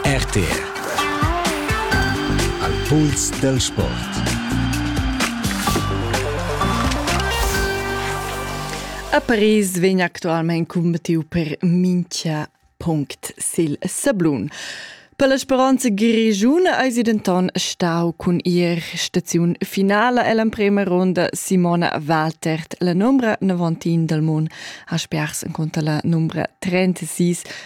RTR Al puls dal sport A Paris vegn actualment cumbattiu per mincha punct sil sablun. Per la Speranza Grigiun eisi denton stau cun ir staziun finala ell'emprema ronda Simona Waltert. La numbra 19 dal Mon ha spers en conta la numbra 36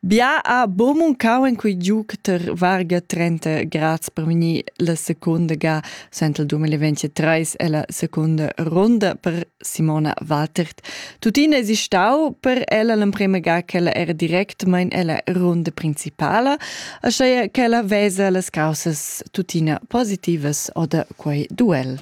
Bia ha buca muncau en quei giug ter varga 30 grads per vegnir la secunda ga sentel 2023 ella secunda ronda per Simona Waltert. Tuttina esi stau per ella l'emprema ga ch'ella era directmein ella runda principala, aschia ch'ella vesa las causas tuttina positivas oder quei duel.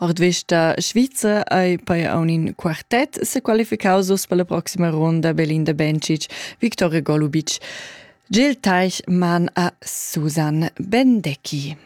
Ord vista svizzer ei pei aun in quartet sequalificaus uss per la proxima ronda Belinda Bencic, Victoria Golubic, Gil Teich man a Susan Bendecki.